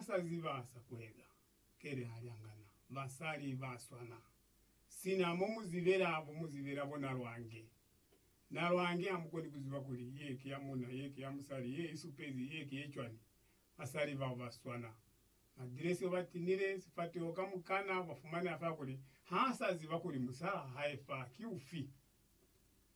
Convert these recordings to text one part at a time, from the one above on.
sa ziba sa kueza, kele ha li angana, basali ba swana sina mo mu zibela bo mu zibela bo na lwange. Na lwange ha mu koni ku ziba kuli ye ki ya muna, ye ki ya musali, ye i supezi, ye ki ye cwani. Basali bao ba swana. Madilesi o ba tinile sifateho kamukana ba fumane a fa kuli ha sa ziba kuli musa wa hae fa ki ufi.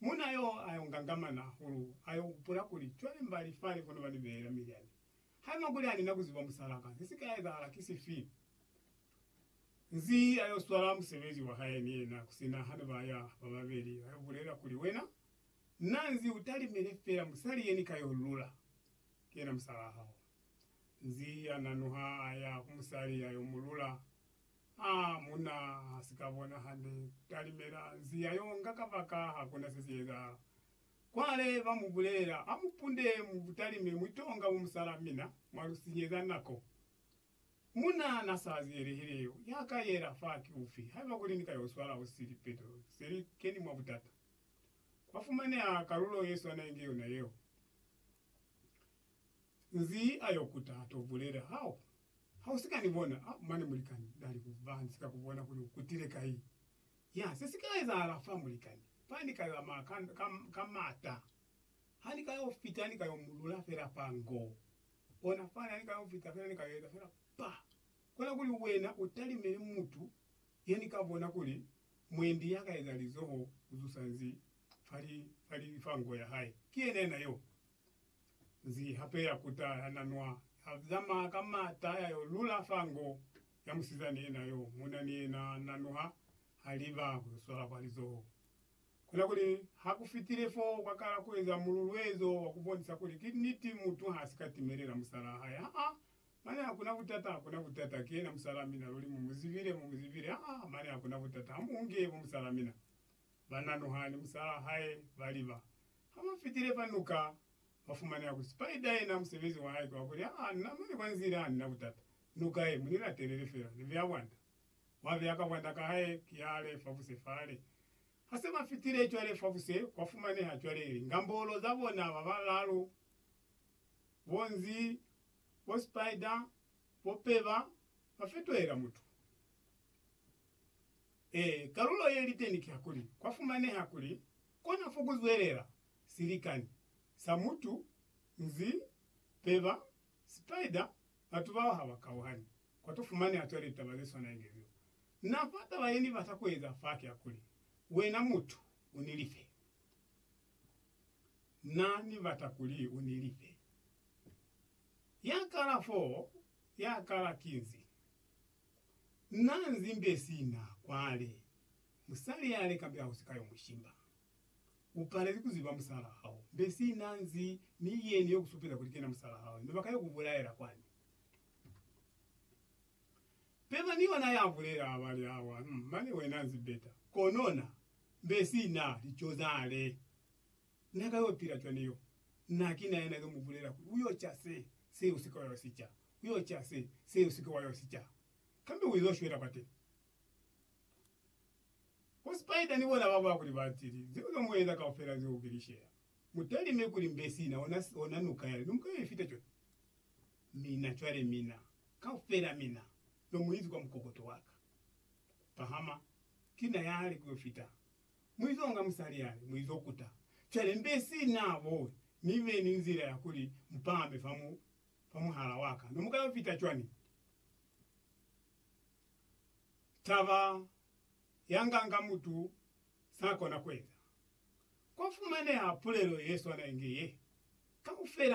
Muna yo a yo ngangamana hahulu, a yo hupula kuli, Cwale mbali fale kono ba ni beela milyani, Haiba kuli anina kuziba musalaka, sesika ezahala ki sifi? Nzi ayo swala musebezi wahae ni yena kusina hane baya bababeli, ayo bulela kuli, Wena, na nzi utalimile fela musali yeni kayo lula? Ki yena musalaa hao. Nzi ananuha aya ku musali ayo mulula? A muna hasika bona hande, talimela nzi ayo nga kabaka hakuna sesi ezahala. Cwale ba mu bulelela, Ha mu punde mu butali mi mu tonga bo musala mina, mwa lu sinyeza nako. Muna na sa ziyelehile yo, ya ka yela fa ki ufi, haiba kuli ni ka yo swala ho si li peto, se li keni mwa butata. Kwa fumaneha kalulo ye swana inge yona yeo. Nzi a yo kuta, a to bulela, Hao, ha u si ka ni bona, ha, mane mulikani, na li ku ba, ni si ka ku bona kuli u kutile kai. Ya, se si ka ezahala fa mulikani. Fa ni ka yo ama ka, ka, ka mata. Ha ni ka yo fita, ni ka yo mu lula fela fa ngo. Ona fani, ha ni ka yo fita fela, ni ka yo eza fela pa. Kona kuli wena u talimele mutu ye ni ka bona kuli mwendi ya ka eza lizoho ku zusa nzi fa li, fa li, fa ngo ya hae. Ki yena yena yo. Nzi hape ya kuta, ya nanwa, ya zamaya ka mata, ya yo lula fa ngo. ya musizani yena yo muna ni yena na nuha ha liba ku yo swala kwa lizoho. Kona kuli ha ku fitile fo, kwa kala ku eza mululuezo wa ku bonisa kuli ki niti mutu ha si ka timelela musalaa hae. Haa, mane hakuna butata, hakuna butata, ki yena musalaa mina, luli mu mu zibile, mu mu zibile, haa, mane hakuna butata, ha mu unge bo musalaa mina. Ba na nuha ni musalaa hae, ba liba. Ha ba fitile fa nuka, ba fumaneha kuli Spider yena musebezi wa hae ki wa kuli, haa, na mane kwa nzila ha ni na butata, Nuka ye, munina telele fela, ni vea bwanda. Mwa vea ka bwanda ka hae, ki hale, fabuse fale. Ha se ba fitile cwale, fabuse, kwa fumaneha cwale lingambolo za bona ba balalu, bo nzi, bo spider, bo peba, ba fetohela mutu. Ee, kalulo ye liteni ki hakuli, kwa fumaneha kuli, kona fo ku zwelela, silikani, sa mutu, nzi, peba, Spider batu bao haba kauhani kwa to fumani a tole taba ze swana inge zeo. Na fa taba ye ni bata ku eza fa ki ya kuli, Wena mutu, u ni life. Na ni bata kuli u ni life. Ya kala foo, ya kala ki nzi. Na nzi mbe sina kwale. Musali ya le kambe ha ku si ka yo mu shimba. Upalezi kuziba musala hao mbe sina nzi mi yeni yo kusupeza kuli kena musala hao mbe bakayo kubulaela kwani? Peba ni yona ya bulela abali hawa mm mane wena nzi beta kono na mbe sina lico zale na kayo pila cwani yo na kina yena yo mubulela kuli uyo ca se se usike wa yo sica uyo ca se se usike wa yo sica kambe uizo shwela kwateni. Bo Spider ni bona ba bakuli ba tili, zeo ka mueza kaufela zeo ki lishela. Mutalime kuli mbe sina ona, ona nuka yale no muka yo ifita cwale. Mina cwale, mina, kaufela mina, no mu izi kwa mukokoto waka. Pahama, ki na yale ku yo fita. Mu izo nga musali yale, mu izo kuta. Cwale mbe sina bo, ni be ni nzila ya kuli mu pahame fa mu, fa muhala waka. No muka yo fita cwani? taba yanganga mutu sakona kueza. Kwafumaneha pulelo yeswana inge ye, Kaufela